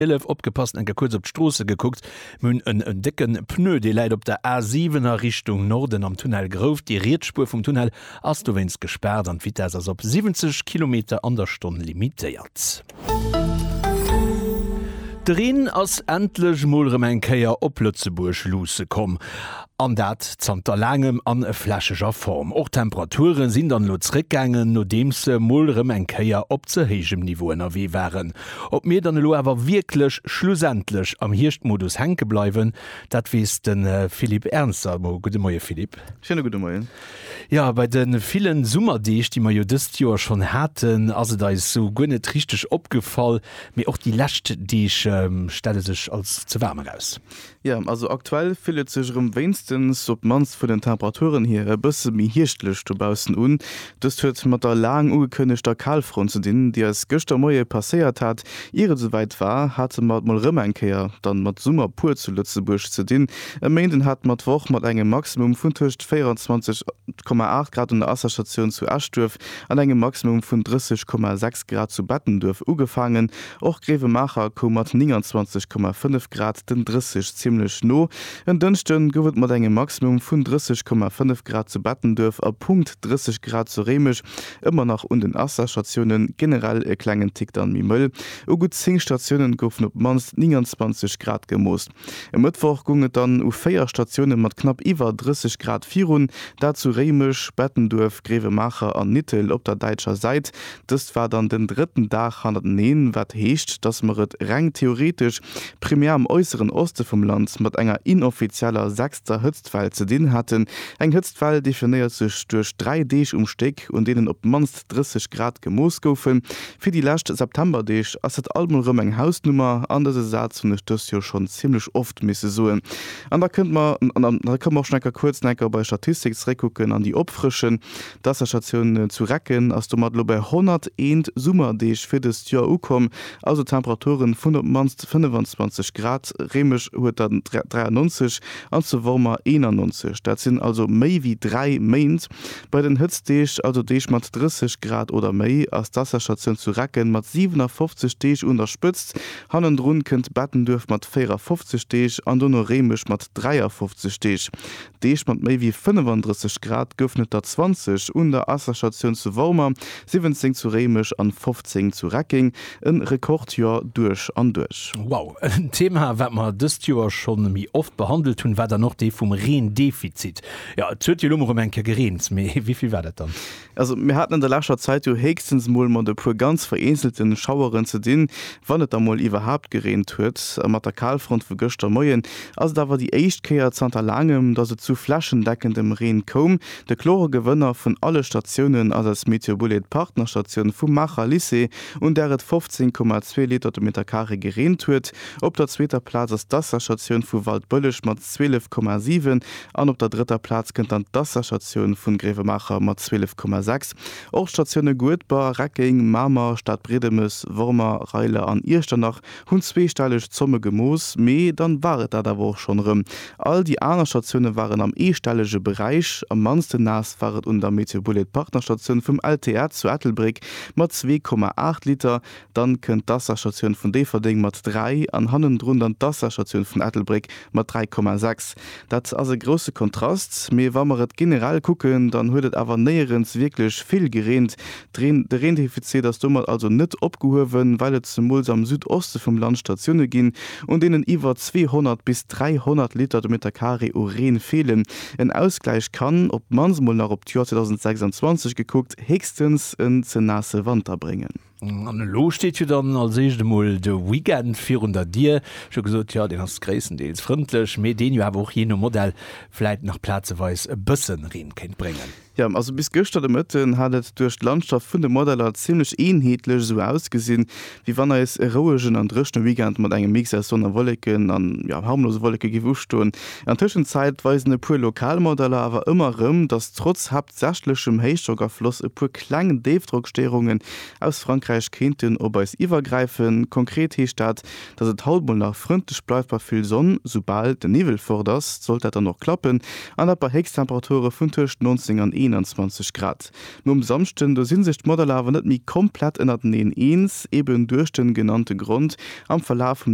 Elef opgepasst, enke kuerz op d'Stroosse gekuckt. Mir hunn en décken Pneu, dee läit op der A 7 a Richtung Norden am Tunnel grouf. Déi riets Spuer vum Tunnel ass dowéinst gespaart an d'Vitess ass op 70 Kilometer an der Stonn limitéiert. De Reen ass endlech mol rem eng Kéier op Lëtzebuerg luusse komm, an dat zanter laangem an flächeger Form. Och d'Temperature sinn dann elo zréckgaangen, nodeems se mol rem eng Kéier op ze héijem Niveau ënnerwee waren. Ob mir dann elo awer wierklech schlussendlech am Hierschtmodus hänke bleiwen, dat weess de Philippe Ernzer elo. Gudde Moie Philippe. Schéine gudde Moien. Jo, bei de villen Summerdeeg, déi mer jo dëst Joer schonn haten, ass et eis esou guer net richteg opgefall, mee och déi lescht Deeg stelle sech als ze waarm eraus. Jo, also aktuell fillt et sech erëm wéinstens, op d'mannst vun den Temperaturen hier, e bësse méi hierschtlech dobaussen un. Dëst huet mat der laang ugekënnegter Kalfront ze dinn, déi eis gëschter Moie passéiert hat. Ier et esouwäit war, hate mer et mol erëm eng Kéier dann mat Summer pur zu Lëtzebuerg ze dinn. E Méinden hat mer d'Woch mat engem Maximum vun tëscht 24,8 Grad un der Asserstatioun zu Eschduerf an engem Maximum vun 30,6 Grad zu Bettenduerf ugefaangen. Och Grevenmacher koum mat 29,5 Grad den 30 zimmlech no. En Dënschden gouf et mat engem Maximum vun 30,5 Grad zu Bettenduerf a Punkt 30 Grad zu Réimech ëmmer nach un den Asserstatiounen, generell e klengen Tick dann méi mëll. U gutt 10 Statiounen goufen op d'mannst 29 Grad gemooss. E Mëttwoch goung et dann u 4 Statioune mat knapp iwwer 30 Grad virun, dat zu Réimech, Bettenduerf, Gréiwemaacher an Nittel op der däitscher Säit. Dëst war dann den drëtten Dag hannerteneen, wat heescht, datt mer et reng theoretesch primär am äusseren Oste vum Land mat enger inoffizieller sechster Hëtztwell ze dinn haten. Eng Hëtztwell definéiert sech duerch dräi Deeg um Stéck, un deenen op d'mannst. 30 Grad gemooss goufen. Fir déi lescht Septemberdeeg ass dat alt mol rëm eng Hausnummer, an dëse Saz hunn ech dëst Joer schonn zimmlech oft misse soen. An da kënnt mer, an da kënnt mer och schonn enker kuerz enker bei Statistik zeréckkucken an déi opfrëschen. D'Waasserstatioun zu Recken ass domat elo bei 101 Summerdeeg fir dëst Joer ukomm, also Temperaturen vun op d'mannst 25 Grad. Réimech huet der 93 an zu Wormer 91, dat sinn also méi wéi dräi Méint, Bei den Hëtztdeeg, also Deeg mat 30 Grad oder méi, ass d'Wasserstatioun zu Recken mat 57 Deeg un der Spëtzt. Hannendrun kënnt Bettenduerf mat 54 Deeg an dono Réimech mat 53 Deeg. Deeg mat méi wéi 35 Grad goufen et der 20 un der Wasserstatioun zu Wormer, 17 zu Réimech an 15 zu Reckeng. E Rekordjoer duerch an duerch. Wow, en Thema wat mer dëst Joer schonn méi oft behandelt hunn, war dann och dee vum Reendefizit. Jo, et huet jo elo mol rëm eng Kéier gereent, mee wéi vill war dat dann? Also mir haten an der leschter Zäit jo héchstens mol mat e puer ganz vereenzelte Schaueren ze dinn, wann et da mol iwwerhaapt gereent huet. A mat der Kalfront vu gëschter Moien ass et awer déi éischt Kéier zanter laangem, datt et zu flächendeckendem Reen koum. De klore Gewënner vun alle Statiounen ass aus Meteobullet d'Partnerstatioun vum Maacher Lycée, un där et 15,2 Liter de Meter Carré gereent huet. Op der zweeter Plaz ass d'Asra-Statioun vu Waldbëlleg mat 12,7 An op der drëtter Plaz kënnt dann d'Wasserstatioun vun Gréiwemaacher mat 12,6. Och d'Statioune Guedber, Reckeng, Mamer, Stadbriedemes, Wormer, Reiler an Iechternach hunn zweestelleg Zomme gemooss, mee dann war et dat awer och schonn erëm. All déi aner Statioune waren am eestellege Beräich. Am mannsten naass war et un der Meteobulet-Partnerstatioun vum LTA zu Ettelbréck mat 2,8 Liter. Dann kënnt d'Asserstatioun vun Déifferdeng mat 3 an hannendrun dann d'Asserstatioun vun Ettelbréck mat 3,6. Dat ass e grousse Kontrast. Mee wa mer et generell kucken, dann huet et awer néierens wierklech vill gereent. D'Reen, de Reendefizit ass domat also net opgehuewen, well et zemools am Südoste vum Land Statioune ginn, un deenen iwwer 200 bis 300 Liter de Meter Carré u Reen feelen. En Ausgläich kann, op d'mannst mol nach op d'Joer 2026 gekuckt, héchstens en ze naasse Wanter bréngen. An elo steet jo dann als éischt emol de Weekend virun der Dier. Scho gesot, jo, deen ass gréisstendeels frëndlech, mee deen jo awer och jee no Modell vläit nach plazeweis e bësse Reen kéint bréngen. Jo, also bis gëschter de Mëtten hat et duerch d'Landschaft vun de Modeller zimmlech eenheetlech esou ausgesinn, wéi wann eis e rouegen an dréchne Weekend mat engem Mix aus Sonn a Wolleken an, jo, harmlose Wolleke géif ustoen. An Tëschenzäit weisen e puer lokal Modeller awer ëmmer erëm, dass trotz, südwestlechem Héichdrockafloss e puer kleng Déifdrockstéierungen aus Frankräich kéinten op eis iwwergräifen. Konkret heescht dat, dass et haut mol nach frëndlech bleift bei vill Sonn. Soubal den Niwwel fort ass, sollt dat dann och klappen, an dat bei Héchsttemperature vun tëscht 19 an 21 Grad. Nom Samschden, do si sech d'Modeller awer net méi komplett ënnerteneen eens, eben duerch de genannte Grond. Am Verlaf vum.